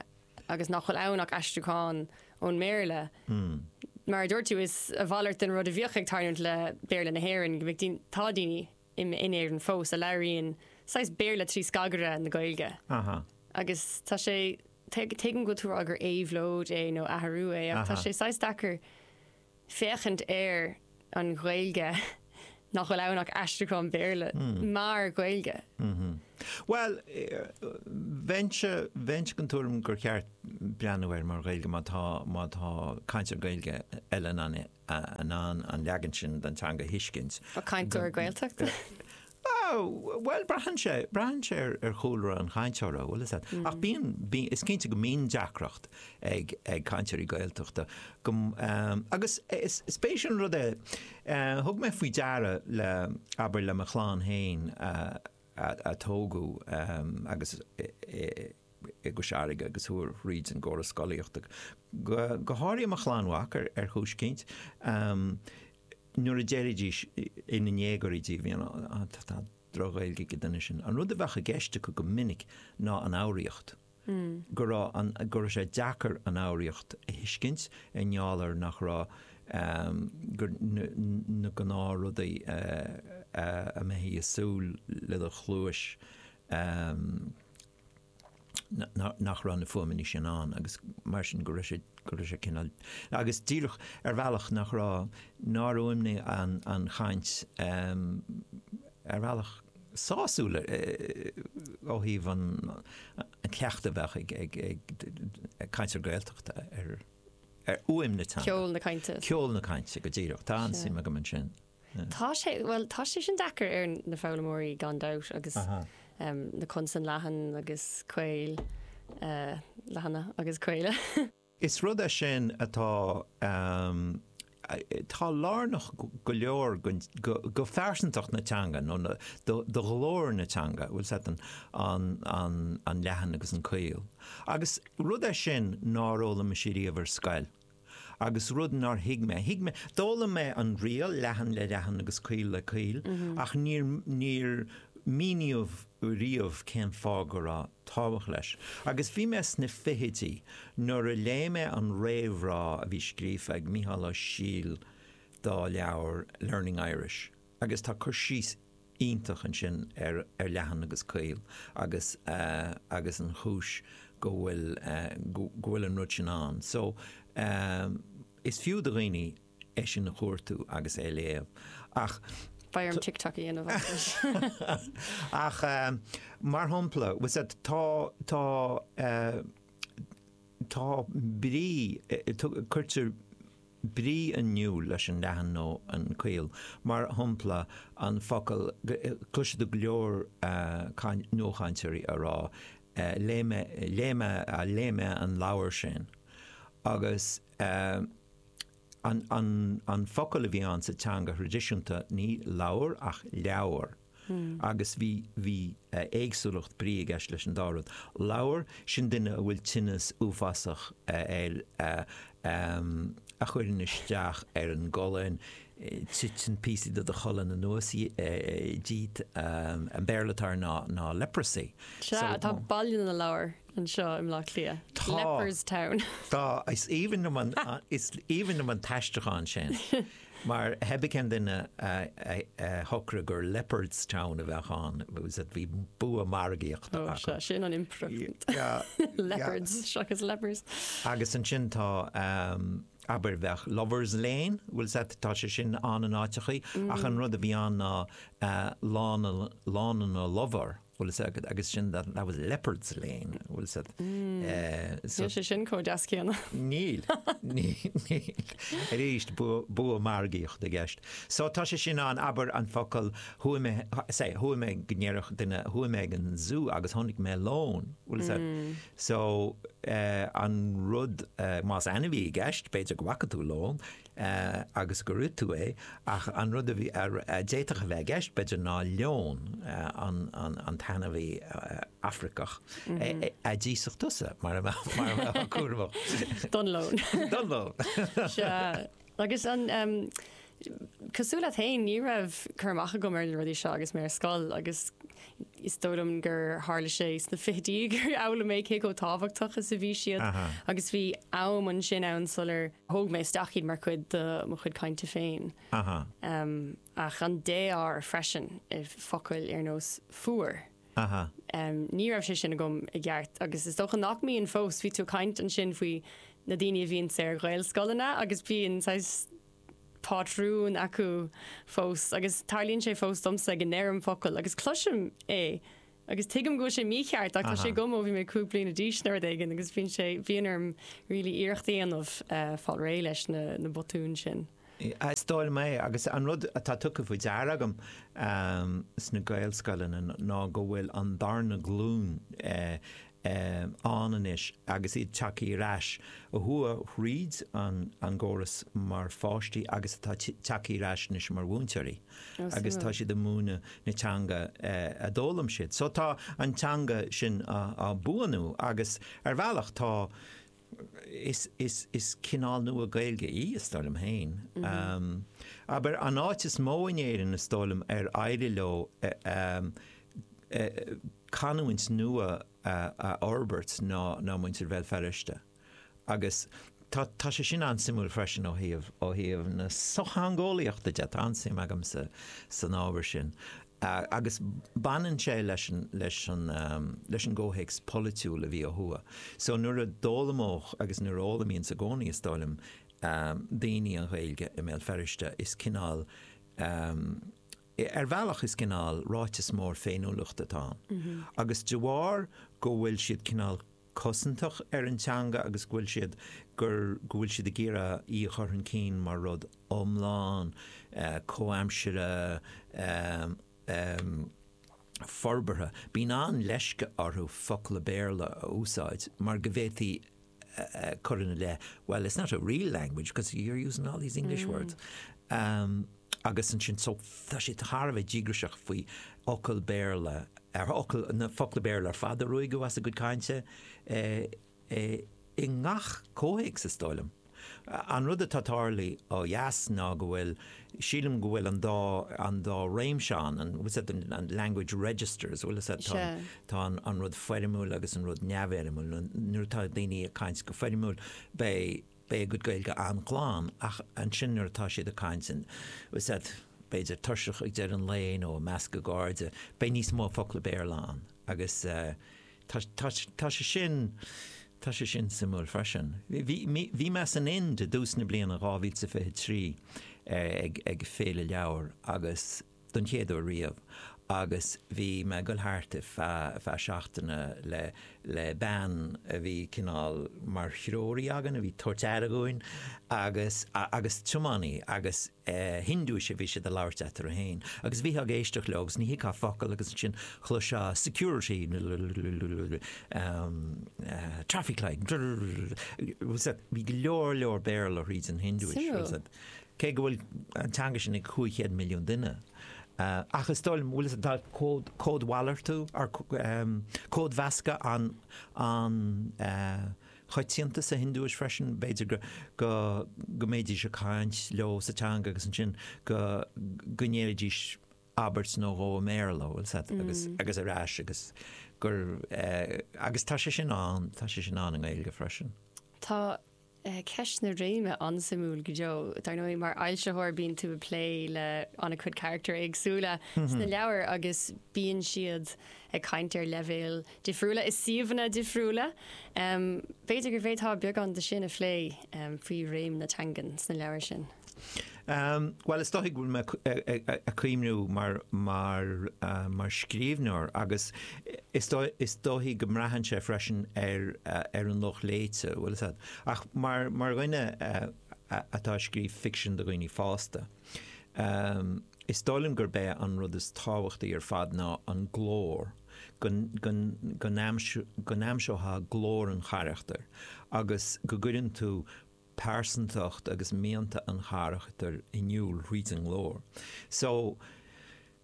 agus nach bhfuil ann ach aistriúchán ón mBéarla, mar a dúirt tú, is a mhalairt den rud a bhíodh ag tarlúint le Béarla na hÉireann go mbeadh daoine, tá daoine in Éirinn fós a labhraíonn saghas Béarla trí scagaire na Gaeilge. Agus tá sé Tuigim go bhfuil tú ag rá gur éabhlóid é nó athrú é ach tá sé saghas deacair féachaint ar an Ghaeilge nach bhfuil ann ach aistriúchán Béarla mar Ghaeilge. Bhuel, bheinn den tuairim gur cheart breathnú air mar Ghaeilge má tá, má tá cainteoir Gaeilge eile in ann an leagan sin den teanga a thuiscint. Cainteoir Gaeltachta? Bha, bhuel, braitheann sé, braitheann sé ar, ar chúlra an chainteora, bhuel, is ea. Ach bíonn, bíonn, is cinnte go mbíonn deacracht ag, ag cainteoirí Gaeltachta go, agus is, is spéisiúil an rud é, thug mé faoi deara le, abair, le mo chlann fhéin a, a, a tógadh agus i, i, i gCois Fharraige agus chuaigh thríd an gcóras scolaíochta, go, go háirithe mo chlann mhac ar, ar chúis eicínt, nuair a déarfaidís ina ndéagóirí díobh, you know, ah, tá droch-Ghaeilge ag an duine sin. An rud a bheadh i gceist acu go minic ná an fhoghraíocht, go raibh an, go raibh sé deacair an fhoghraíocht a thuiscint i ngeall ar nach raibh, ehm, gur, na, na gnáthrudaí a mbeifí ag súil le do chluais, ehm, nach raibh na fuaimeanna sin ann agus mar sin go raibh sé, go raibh sé cineál, agus díreach ar bhealach nach raibh, nár fhuaimnigh an chaint ar bhealach sásúil ó thaobh an chleachtadh a bheadh ag cainteoir Gaeltachta ar fhuaim na teanga. Ceol na cainte. Ceol na cainte go díreach. Tá an-suim agam ansin. Tá sé, bhuel, tá sé sin deacair ar na foghlaimeoirí gan dabht agus na consain leathan agus caol, leathana agus caola. Is rud é sin atá, atá lárnach go leor do phearsantacht na teanga nó do ghlór na teanga, bhuel, is é sin an leathan agus an caol. Agus rud é sin nár fhoghlaim muid riamh ar scoil. agus rud nár thuig mé, thuig mé, d'fhoghlaim mé an riail, leathan le leathan agus caol le caol, ach níor, níor míníodh riamh cén fáth go raibh tábhacht leis. Agus bhí mé sna fichidí nuair a léigh mé an réamhrá a bhí scríofa ag Micheál Ó Siadhail dá leabhar Learning Irish, agus tá cur síos iontach ansin ar leathan agus caol agus agus an chúis go bhfuil go bhfuil an rud sin ann. So is fiú do dhaoine é sin a chuartú agus é a léamh ach. Beidh orm TikTok a dhéanamh as leis. Ach mar shompla was that tá tá tá brí cuirtear brí in iúl leis an leathan nó an caol, mar shompla, an focal cloisfidh tú go leor nuachainteoirí ag rá léigh mé, léigh mé, léigh mé an leabhar sin agus an focal a bhí ann sa teanga thraidisiúnta ní lobhar ach leabhar. Agus bhí, bhí éagsúlacht brí i gceist leis an dá rud. Lobhar, sin duine a bhfuil tinneas uafásach air a chuireann isteach ar an gcolainn, titeann píosaí de do cholainn anuas díot, an Béarla atá air ná, ná leprosy. Sea, tá Baile na Lobhar anseo i mBleá Cliath, leper's town. Tá, is aoibhinn liom an, is aoibhinn liom an t-aistriúchán sin. Má ba é an duine a shocraigh gur Leopardstown a bheadh ann, bhí bua margaíochta acu. Ó, sin an impireacht. Leopards seachas lepers. Agus ansin tá, abair, bheadh Lovers Lane, bhuel, sea, tá sé sin ann in áiteachaí, ach an rud a bhí ann ná Lána na Lobhar. bhfuil is agat agus sin that was Lepers Lane bhfuil is agat so. Níl sé sin comh deas céanna. Níl níl arís bua margaíochta i gceist so tá sé sin ann abair an focal chuaigh mé say chuaigh mé go ndéarfadh duine chuaigh mé ag an Zoo agus chonaic mé lón bhfuil is a'd so an rud más ainmhí i gceist b'fhéidir go bhfaca tú lón. agus gur ith tú é, ach an rud a d'fhéadfadh a bheith i gceist, b'fhéidir, ná leon, an t-ainmhí Afraiceach, a d'íosfadh tusa, mura mbeifeá cúramach. Don leon. Don leon. Sea. Agus an em, cosúil leat fhéin, ní raibh cur amach agam ar na rudaí seo agus mé ar scoil agus, is dóigh liom gur tharla sé sna fichidí gur fhoghlaim mé cé chomh tábhachtach is a bhí siad agus bhí am ansin ann sular thóg mé isteach iad mar chuid de mo chuid cainte féin. Ach an défhoghar freisin, focail ar nós 'fuar', ní raibh sé sin agam i gceart agus is dócha nach mbíonn fós, bhí tú ag caint ansin faoi na daoine a bhíonn sna Gaelscoileanna agus bíonn saghas, pátrún acu fós agus tarlaíonn sé fós domsa go ndeirim focal agus cloisim é agus tuigim go bhfuil sé mícheart ach tá sé agam ó bhí mé cúig bliana d'aois nó rud éigin agus bíonn sé, bíonn orm really iarracht a dhéanamh fáil réidh leis na, na botúin sin. Is dóigh liom é agus an rud atá tugtha faoi deara agam sna Gaelscoileanna ná go bhfuil an darna glúin, ann anois agus iad tagtha ar ais a chuaigh thríd an gcóras mar pháistí agus atá tagtha ar ais anois mar mhúinteoirí agus tá siad ag múineadh na teanga a d'fhoghlaim siad. So tá an teanga sin á buanú agus ar bhealach tá is, is, is cineál nua Gaeilge í, is dóigh liom féin. Abair, an áit is mó in Éirinn, is dóigh liom, ar éirigh leo canúint nua a fhorbairt ná, ná muintir Bhéal Feirste. Agus tá, tá sé sin an-suimiúil freisin ó thaobh, ó thaobh na sochtheangeolaíochta de, tá an-suim agamsa san ábhar sin. agus baineann sé leis an gcomhthéacs polaitiúil a bhí ó thuaidh. So nuair a d'fhoghlaimíodh, agus nuair a fhoghlaimíonn sa gcónaí is dóigh liom, daoine an Ghaeilge i mBéal Feirste, is cineál, ar bhealach is cineál ráiteas mór féiniúlachta atá ann. Agus de bharr go bhfuil siad cineál. cosantach ar an teanga agus go bhfuil siad gur go bhfuil siad ag iarraidh í a chur chun cinn mar rud iomlán, comhaimseartha, forbartha. Bíonn an-leisce orthu focla Béarla a úsáid mar go bhféadfaí cur ina leith, 'Well, it's not a real language because you're using all these English words. agus ansin so tá sé thar a bheith díograiseach faoi fhocail Béarla, na focla Béarla ar fad a ruaigeadh as a gcuid cainte i ngach comhthéacs is dóigh liom. An rud atá tarlaithe ó dheas ná go bhfuil, sílim go bhfuil an dá, an dá réimse ann, bhfuil a fhios agat, language registers, bhfuil, tá an, tá an rud foirmiúil agus an rud neamhfhoirmiúil, nuair atá daoine ag caint go foirmiúil beidh, Beidh a gcuid Gaeilge an-ghlan ach ansin nuair atá siad ag caint eatarthu féin, b'fhéidir tuirseach ag deireadh an lae nó i measc a gcairde, beidh níos mó focla Béarla ann agus tá, tá, tá sé sin, tá sé sin suimiúil freisin. Bhí, bhí, bhí mé san Ind i dtús na bliana 2023 ag, ag féile leabhar agus. don chéad uair riamh agus bhí mé ag dul thart feadh seachtaine le bean a bhí cineál mar threoraí againn, a bhí ag tabhairt aire dhúinn agus agus tiománaí agus Hiondúis a bhí siad ag labhairt eatarthu féin agus bhíteá ag éisteacht leo agus ní thuigfeá focal agus ansin chloisfeá security traffic light bhí go leor leor Béarla thríd an Hiondúis. cé go bhfuil an teanga sin ag 500 milliún duine, ach is dóigh liom, bhfuil, tá códmhalartú, códmheascadh an-choitianta sa Hiondúis freisin, b'fhéidir go mbéidís ag caint leo sa teanga agus ansin go ndéarfaidís abairt nó dhó i mBéarla, bhfuil a fhios agat, agus ar ais, agus gur, agus tá sé sin ann, tá sé sin ann i nGaeilge freisin. Tá Ceist na réime an-suimiúil go deo. Dar ndóigh mar fhoilsitheoir bíonn tú ag plé le an-chuid carachtar éagsúla sna leabhair agus bíonn siad ag caint ar leibhéil difriúla i suíomhanna difriúla. B'fhéidir go bhféadfá beagán de sin a phlé faoi réim na teangan sna leabhair sin? Bhuel, is dóigh go bhfuil mé ag cuimhniú air mar scríbhneoir agus is dóigh go mbraitheann sé freisin ar an lucht léite, bhfuil a fhios agat, ach mar dhuine atá ag scríobh ficsin do dhaoine fásta, is dóigh liom gurb é an rud is tábhachtaí ar fad ná an glór, go n-aimseofá glór an charachtair agus go gcuireann tú pearsantacht agus mianta an charachtair in iúl thríd an nglór. So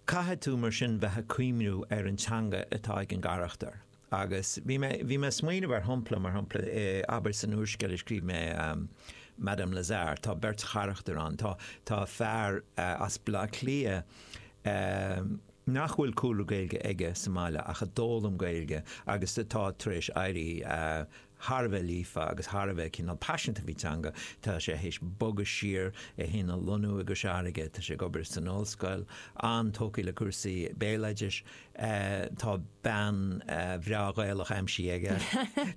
caithfidh tú mar sin bheith ag cuimhniú ar an teanga atá ag an gcarachtar agus bhí mé, bhí mé ag smaoineamh ar shompla, mar shompla, abair san úrscéal a scríobh mé, Madame Lazare, tá beirt charachtar ann, tá, tá fear as Baile Átha Cliath nach bhfuil cúlra Gaeilge aige sa mbaile ach a d'fhoghlaim Gaeilge agus atá tar éis éirí thar a bheith líofa agus thar a bheith cineál paiseanta faoin teanga. Tá sé théis bogadh siar, é fhéin a lonnú i gCois Fharraige, tá sé ag obair san ollscoil, an-tógtha le cúrsaí béaloidis, tá bean bhreá Ghaelach aimsithe aige,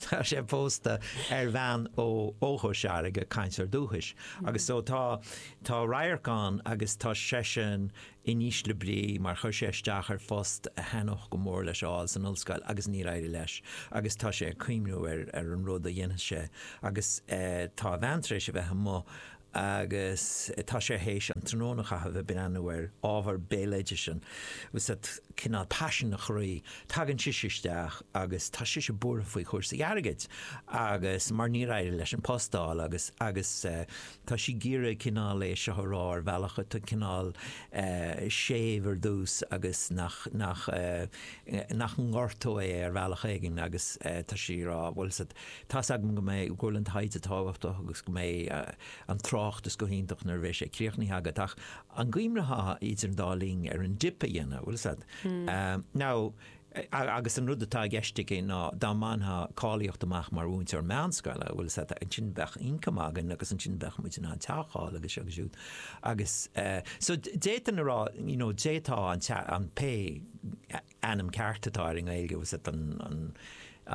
tá sé pósta ar bhean ó ó Chois Fharraige, cainteoir dúchais, agus so tá tá radharc ann agus tá seisean in ísle brí mar chuir sé isteach ar phost a thaitneodh go mór leis a fháil san ollscoil agus níor éirigh leis agus tá sé ag cuimhniú ar an rud a dhéanfas sé agus tá a bhean tar éis a bheith amuigh agus tá sé théis an tráthnóna a chaitheamh ag breathnú ar ábhar béaloidis an bhfuil a fhios a'd cineál paisean a chroí tagann sise isteach agus tá sise buartha faoi chúrsaí airgid agus mar níor éirigh leis an post a fháil agus agus Tá sí ag iarraidh cineál é seo a rá ar bhealach atá cineál séimh ar dtús agus nach nach nach ngortóidh é ar bhealach éigin agus tá sí ag rá bhfuil a fhios a'd tá a fhios agam go mbeidh go bhfuil an taighde tábhachtach agus go mbeidh an tráchtas go hiontach nuair a bheas sé críochnaithe agat ach an gcuimhneofá idir an dá linn ar an dip a dhéanamh bhfuil a fhios a'd. Now, agus an rud atá i gceist aici ná dá mbainfeá cáilíocht amach mar mhúinteoir meánscoile, bhfuil a fhios a'd, ansin bheadh ioncam againn agus ansin bheadh muid in ann teach a fháil agus seo agus siúd. Agus, eh, so, d'fhéadfainn a rá, you know, d'fhéadfá an tea, an, pé ainm ceart atá air i nGaeilge, bhfuil a fhios a'd, an, an,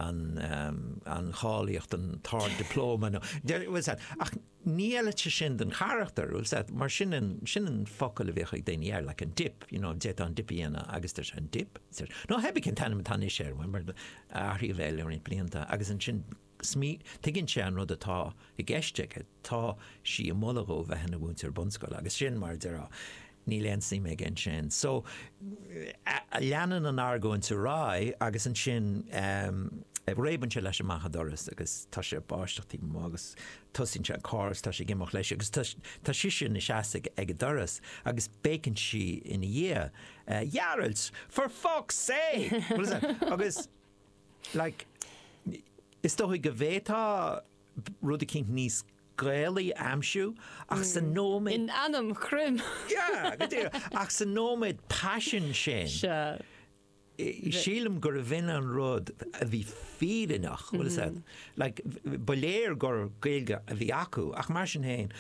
an, eh, an cháilíocht, an, t-ard-dioplóma nó, bhfuil a fhios a'd, ach, ní fheilfeadh sé sin don charachtar, bhfuil a fhios a'd, mar sin an, sin an focal a bhíodh ag daoine air, like an dip, you know, d'fhéadfá an dip a dhéanamh agus deir sé an dip, deir, nó theibí cén t-ainm atá anois air, bhuel mar athraíodh é le roinnt blianta agus ansin smí, tuigeann sé an rud atá i gceist aige, tá sí ag moladh dhó bheith ina mhúinteoir bunscoile agus sin mar a déarfá, Níl aon suim aige ansin. So, leanann an argóint ar aghaidh agus ansin réabann sé leis amach an doras agus tá sé ag báisteach taobh amuigh agus tosaíonn sé an carr agus tá sé ag imeacht leis agus tá sise ina seasamh ag an doras agus béiceann sí ina dhiaidh, Ghearailt! For fuck's sake! Agus, like, is dóigh go bhféadfá rud eicínt níos Gaelaí a aimsiú, ach sa nóiméad. In ainm Chroim! Yeah, go díreach. Ach sa nóiméad paisin sin, sílim gurbh in an rud a bhí fírinneach, bhfuil fhios a'd. Like, ba léir gur Gaeilge a bhí acu, ach mar sin féin,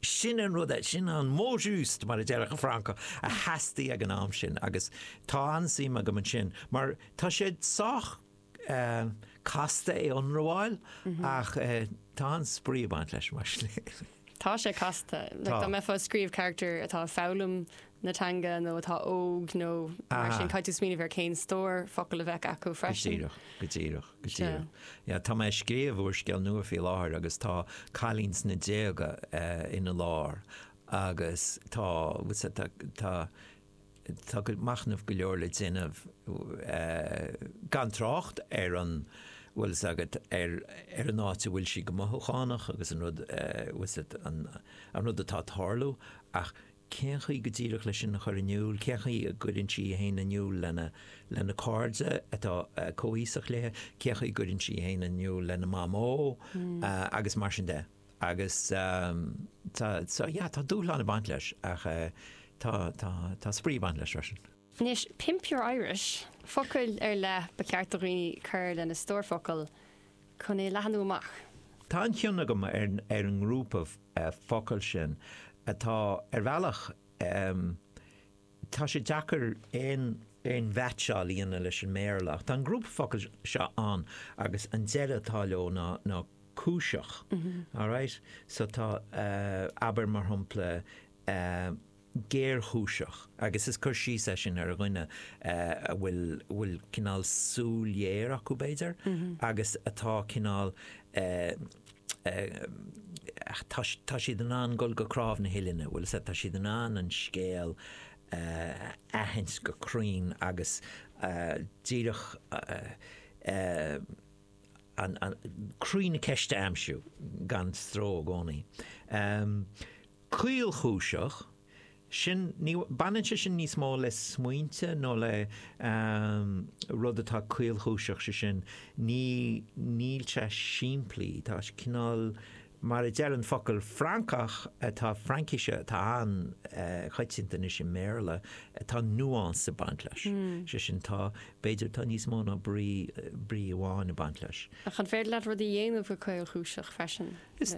sin an rud a, sin an mot juste, mar a deireann an Francach, a theastaigh ag an am sin agus tá an-suim agam ansin mar tá sé sách casta é ionramháil ach tá an-spraoi ag baint leis mar sin féin. Tá sé casta. Tá. Dá mbeifeá ag scríobh carachtar atá ag foghlaim na teanga nó atá óg nó mar sin, caithfidh tú smaoineamh ar cén stór focal a bheadh acu freisin. Go díreach, go díreach, go díreach. Tá mé ag scríobh úrscéal nua faoi láthair agus tá cailín sna déaga ina lár agus tá Tá machnamh go leor le déanamh, gan trácht ar an bhfuil fhios agat, ar an áit a bhfuil sí go mothúchánach agus an rud, bhfuil fhios agat, an rud atá ag tarlú, ach cén chaoi go díreach leis sin a chur in iúl, cén chaoi a gcuireann sí fhéin in iúl le, lena cairde atá comhaoiseach léi, cén chaoi a gcuireann sí fhéin in iúl lena mamó agus mar sin de. Agus tá, so, yeah, tá dúshlán ag baint leis ach tá, tá, tá spraoi ag baint leis freisin. Anois, pimp your Irish! Focail ar leith ba cheart do dhaoine cur lena stór focal chun é leathnú amach. Tá an-chion agam ar ar an ngrúpa focal sin atá ar bhealach. Tá sé deacair aon mheaitseáil a dhéanamh leis an mBéarla, ach tá an grúpa focal seo ann agus an deireadh atá leo ná cúiseach, alright? So tá, abair, mar shampla, géarchúiseach agus is cur síos é sin ar dhuine a bhfuil bhfuil cineál súil ghéar acu, b'fhéidir, agus atá cineál, tá siad in ann dul go cnámh na huillinne, bhfuil fhios a'd, tá siad in ann an scéal a aithint go cruinn agus díreach, croí na ceiste a aimsiú gan stró i gcónaí. Caolchúiseach. sin, baineann sé sin níos mó le smaointe nó le rud atá caolchúiseach, sé sin, ní, níl sé simplí, tá sé cineál, mar a deir an focal Francach atá, Fraincise atá an-choitianta anois i mBéarla, tá nuance ag baint leis, sé sin, tá, b'fhéidir, tá níos mó ná brí, brí amháin ag baint leis. Ach an féidir leat rud a dhéanamh go caolchúiseach freisin? Is.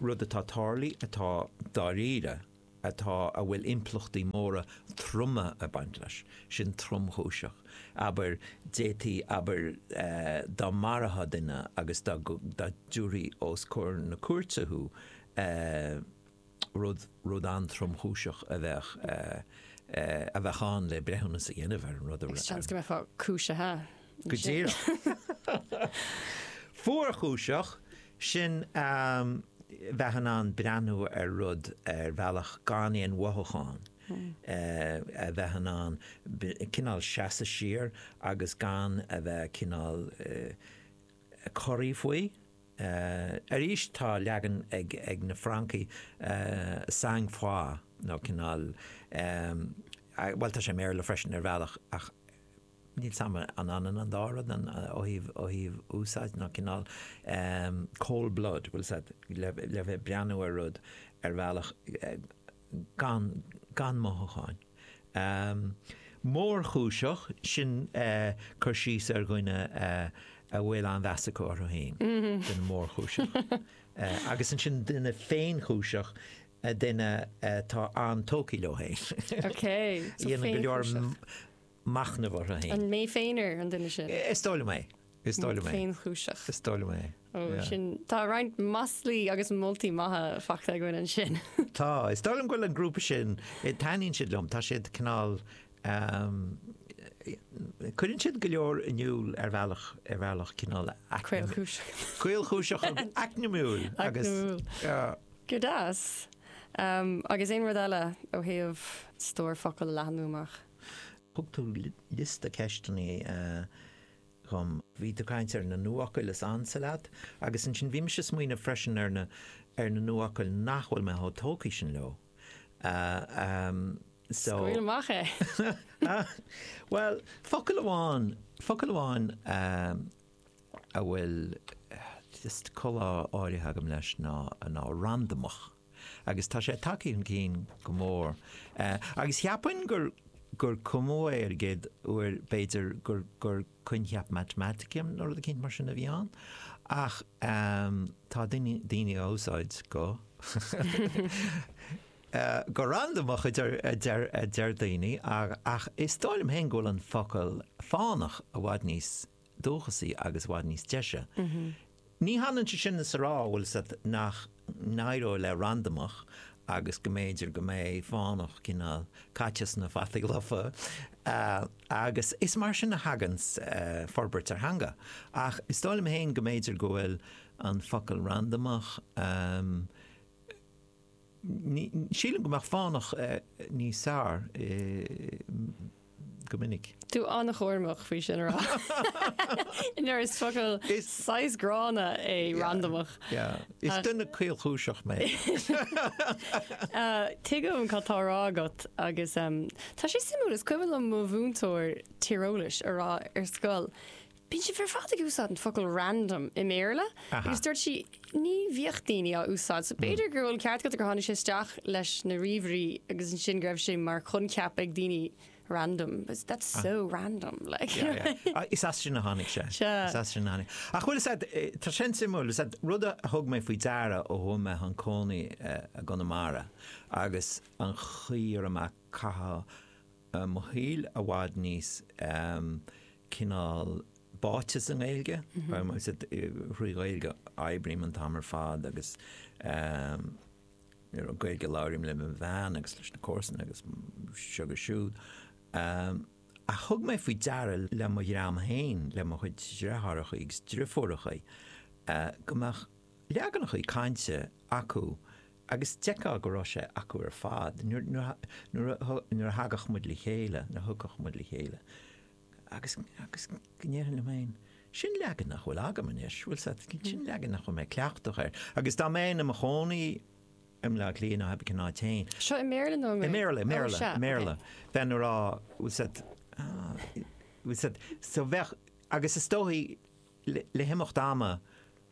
rud atá tarlaí atá dáiríre atá a bhfuil impleachtaí móra troma ag baint leis, sin tromchúiseach, abair, d'fhéadfaí, abair, dá marófá duine agus dá dtiúrfaí os comhair na cúirte thú, rud, rud an-tromchúiseach a bheadh, a bheadh ann le breithiúnas a dhéanamh ar an rud. Seans go mbeifeá cúisithe. Go díreach. Fuarchúiseach, sin bheith in ann breathnú ar rud ar bhealach gan aon mhothúchán, a bheith in ann cineál seasamh siar agus gan a bheith cineál corraithe faoi. Arís tá leagan ag na Francaigh, sang froid, nó cineál, bhuel tá sé i mBéarla freisin ar bhealach ach níl 's a'm an ionann an dá rud ó thaobh úsáid nó cineál, cold blood, bhuel sórt le bheith ag breathnú ar rud ar bhealach, gan gan mothucháin. mórchúiseach, sin cur síos ar dhuine a bhfuil an-mheas acu orthu féin, duine mórchúiseach. Agus ansin duine féinchúiseach, duine atá an-tógtha leo féin. Dhéanann go leor. machnamh orthu féin. Mé féinear an duine sin. Is dóigh liom é. Is dóigh liom é. Féinchúiseach. Is dóigh liom é. Ó, Yeah. sin tá roinnt maslaí agus moltaí maithe faighte againn ansin. Tá, is dóigh liom go bhfuil an grúpa sin taitníonn siad liom, tá siad cineál ehm, cuireann siad go leor in iúl ar bhealach ar bhealach cineál Caolchúis. Caolchúiseach acmhainniúil agus Acmhainniúil. Yeah. Go deas. Um, agus aon rud eile ó thaobh stór focail a leathanú amach. Thug tú liosta ceisteanna dhom. Bhí tú ag caint ar na nuafhocail is ansa leat agus ansin bhí mise ag smaoineamh freisin ar na ar na nuafhocail nach bhfuil mé chomh tógtha sin leo. Scaoil amach é! Bhuel, focal amháin, focal amháin a bhfuil just col áirithe agam leis ná ná randamach. agus tá sé tagtha chun cinn go mór. Agus cheapfainn gur cumadh é ar an gcéad uair b'fhéidir gur coincheap Matamatice nó rud éicint mar sin a bhí ann, ach tá daoine á úsáid go randamach a deir daoine, ach is dóigh liom féin go bhfuil an focal fánach i bhfad níos dúchasaí agus i bhfad níos deise. Ní hionann sé sin is a rá, bhfuil fhios a'd, nach n-éireoidh le randamach agus go mb'fhéidir go mbeidh fánach, cineál, caite sna fataí lofa agus is mar sin a thagann forbairt ar theanga. Ach is dóigh liom féin go mb'fhéidir go bhfuil an focal randamach, Sílim go mbeadh fánach níos fearr go minic. Tú an-chúramach faoi sin a rá. Mar is focal saghas gránna é randamach. Is duine caolchúiseach mé. Tuigim cad tá a rá agat agus tá sé suimiúil, is cuimhin liom mo mhúinteoir tíreolais ag rá ar scoil, Bíonn sibh ar fad ag úsáid an focal 'random' i mBéarla agus dúirt sí, 'Ní bhíodh daoine á úsáid, so b'fhéidir go bhfuil ceart agat gur tháinig sé isteach leis na ríomhairí agus ansin go raibh sé mar choincheap ag daoine random, but that's so random like. Is as sin a tháinig sé. Sea. Ach bhuel, tá sin suimiúil, rud a thug mé faoi deara ó chuaigh mé chun cónaí i gConamara agus an chaoi a mbím ag caitheamh mo shaoil i bhfad níos cineál báite sa nGaeilge, thrí Ghaeilge a oibrím an t-am ar fad agus Gaeilge a labhraím le mo bhean agus leis na comharsana agus seo agus siúd. Ach thug mé faoi deara le mo dhream féin, le mo chuid dreitheárachaí agus dreifiúrachaí, go mbeadh leaganachaí cainte acu agus d'fheicfeá go raibh sé acu ar fad, nuair a thagadh muid le chéile, nuair a thiocfadh muid le chéile, agus, agus go ndéarfainn liom féin, sin leagan nach bhfuil agam anois, bhfuil fhios a'd, sin leagan nach bhfuil mé cleachtach air, agus dá mbeinn i mo chónaí i mBleá Cliath nó i mBaile an Átha féin. Seo i nGaeilge nó i mBéarla? I mBéarla, i mBéarla, i mBéarla, bheinn a rá, bhfuil fhios a'd, bhfuil fhios a'd, so bheadh, agus is dóigh, le himeacht ama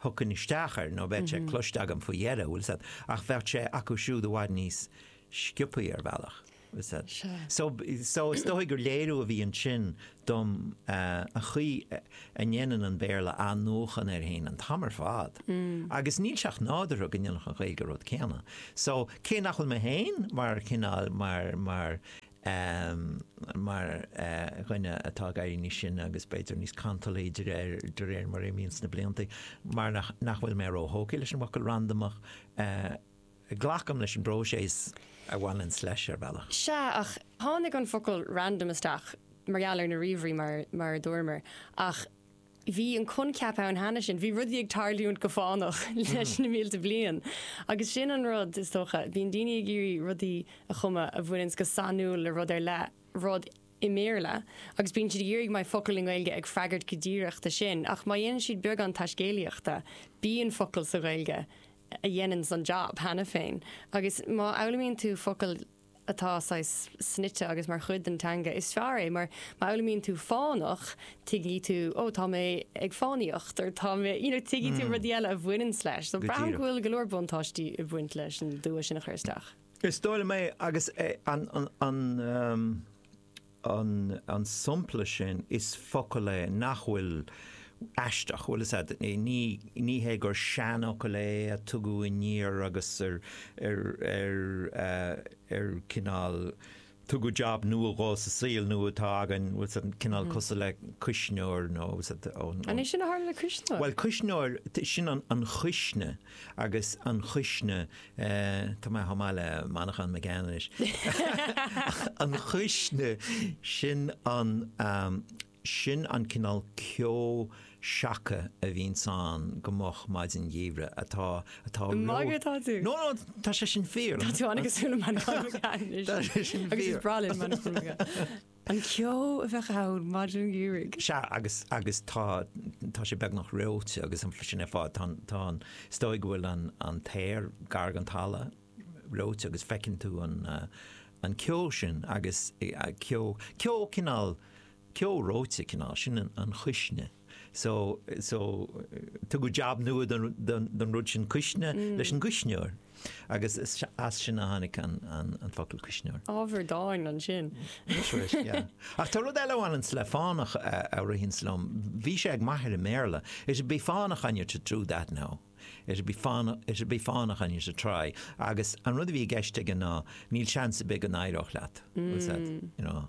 thiocfainn isteach air nó bheadh sé cloiste agam faoi dheireadh, bhfuil fhios a'd, ach bheadh sé acu siúd i bhfad níos sciobthaí ar bhealach, bhfuil fhios a'd. So, so is dóigh gur léiriú a bhí ansin dom an chaoi a ndéanann an Béarla athnuachan air fhéin an t-am ar fad agus níl sé ach nádúrtha go ndéanfadh an Ghaeilge an rud céanna. So, cé nach bhfuil mé féin mar chineál, mar, mar, mar dhuine atá ag éirí níos sine agus b'fhéidir níos cantalí de réir de réir mar a imíonns na blianta, mar nach nach bhfuil mé ró-thógtha leis an bhfocal randamach, glacaim leis an bpróiseas a bhaineanns leis, ar bhealach. Sea, ach tháinig an focal random isteach mar gheall ar na ríomhairí, mar mar a dúramar, ach bhí an coincheap ann cheana sin, bhí rudaí ag tarlúint go fánach leis na mílte bliain agus sin an rud, is dócha, bíonn daoine ag iarraidh rudaí a chumadh a bhaineanns go sainiúil le rud ar leith, rud i mBéarla, agus bíonn siad ag iarraidh go mbeidh focal i nGaeilge ag freagairt go díreach do sin, ach má dhéanann siad beagán taiscéalaíochta, bíonn focal sa Ghaeilge a dhéananns an jab cheana féin agus má fhoghlaimíonn tú focal atá saghas snoite agus mar chuid den teanga, is fearr é, mar má fhoghlaimíonn tú fánach, tuigfidh tú, oh, tá mé ag fánaíocht, or tá mé, you know, tuigfidh tú rudaí eile a bhaineanns leis. Go díreach. So braithim go bhfuil go leor buntáistí ag baint leis an dua sin a chur isteach. Is dóigh liom é agus é an, an, an, um, an sampla sin is focal é nach bhfuil aisteach, bhfuil a fhios agat, ní hé gur seanfhocal é a tugadh aniar agus ar cineál tugadh jab nua dhó sa saol nua atá againn, bhfuil a fhios agat, cineál cosúil le cuisneoir nó, bhfuil a fhios agat, ón. An é sin a tharla le cuisneoir? Bhuel cuisneoir, sin an chuisne agus an chuisne Tá mé chomh maith le Manchán Magan anois. An chuisne, sin an, sin an cineál ceo seaca a bhíonns ann go moch maidin gheimhridh, atá, atá ró-. Ag magadh atá tú. No, no, tá sé sin fíor. Tá tú an-chosúil le Manchán Magan anois. Tá sé sin fíor. Agus is breá linn Manchán Magan. An ceo a bheadh ann maidin gheimhridh. Sea, agus, agus tá, tá sé beagnach reoite agus sin ar fad, tá, tá an, is dóigh go bhfuil an, an t-aer gar don talamh, reoite agus feiceann tú an, an ceo sin agus ceo, ceo cineál, ceo reoite cineál, sin an chuisne. so, so, tugadh jab nua don rud sin cuisne leis an gcuisneoir agus as sin a tháinig an focal cuisneoir. Ábhar dáin ansin. That's right, yeah. Ach tá rud eile a bhaineanns le fánach a ritheanns liom, bhí sé ag m'athair i mBéarla, it'd be fánach on you to do that now, it'd be fánach, it'd be fánach on you to try agus an rud a bhí i gceist aige ná níl seans ar bith go n-éireodh leat, was that, you know.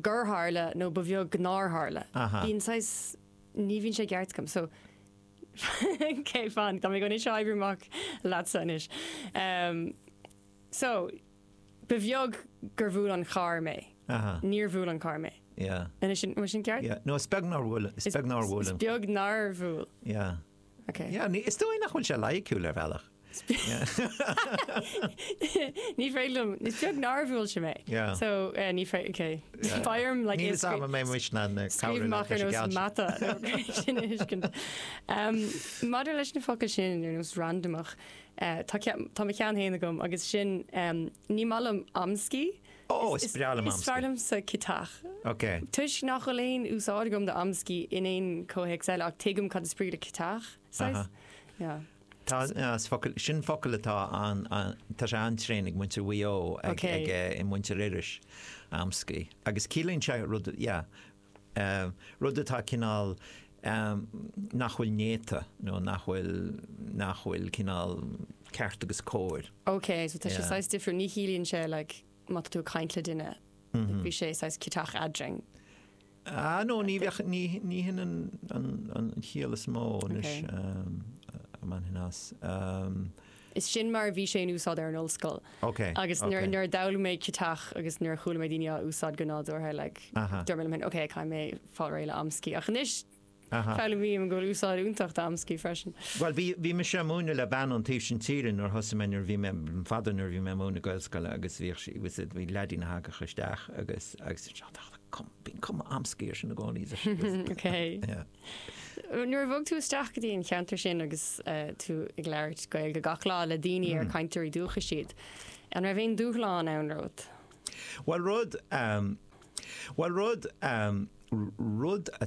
gur tharla nó ba bheag nár tharla. Bíonn saghas, ní bhíonn sé i gceart agam so ok fan tá mé chun seo a oibriú amach leatsa anois. So ba bheag gur bhuail an carr mé. Níor bhuail an carr mé. An bhfuil sé sin ceart? Yeah, no is beag nár bhuail, is beag nár bhuail. Is beag nár bhuail. Yeah. Yeah, is dóigh nach bhfuil sé loighiciúil ar bhealach. Ní féidir liom, is beag nár bhuail sé mé. Yeah. So, eh, ní féidir, ok. Yeah. Beidh orm, like, Níl a fhios agam an mbeidh mise in ann cabhrú leat. Scríobh amach ar nós mata chun é sin a thuiscint. Em, Maidir leis na focail sin ar nós randamach, eh, tá ceann, tá mo cheann féin agam agus sin, em, ní maith liom amscaí Ó, is breá liom amscaí. Is fearr liomsa ciotach. Ok. Toisc nach bhfuil aon úsáid agam d'amscaí in aon chomhthéacs eile, ach tuigim cad is brí le ciotach, saghas. Yeah. Tá, as focail, sin focal atá an, an, tá sé an-tréan ag muintir Mhaigh Eo, ag, ag, muintir Iorrais, amscaí. Agus ciallaíonn sé rud, yeah. rud atá cineál nach bhfuil néata nó nach bhfuil, nach bhfuil cineál ceart agus cóir. OK, so tá sé saghas difriúil, ní chiallaíonn sé like má tá tú ag caint le duine, bhí sé saghas ciotach eadrainn. Ah no, ní bheadh, ní, ní hin an, an, an chiall is mó anois, um, man hin as. Um, Is sin mar a bhí sé in úsáid ar an ollscoil. Ok, Agus nuair, ok. nuair a d'fhoghlaim mé ciotach agus nuair a chuala mé daoine á úsáid go nádúrtha, like, Aha. dúirt mé liom féin, ok, caithfidh mé fáil réidh le amscaí. Ach anois, Aha. foghlaimím go bhfuil úsáid iontach d'amscaí freisin. Bhuel, bhí, bhí mise ag múineadh le bean ón taobh sin tíre nuair a thosaigh mé, nuair a bhí mé, an fada nuair a bhí mé ag múineadh Gaelscoile agus bhíodh sí, was it, bhí leaidín a thagadh isteach agus, agus, bíonn cuma amscaí ar sin i gcónaí. Ok. Yeah. Nuair a bhog tú isteach go dtí an ceantar sin agus tú ag labhairt Gaeilge gach lá le daoine ar cainteoirí dúchais iad, an raibh aon dúshlán ann romhat? Bhuel rud, bhuel rud, rud a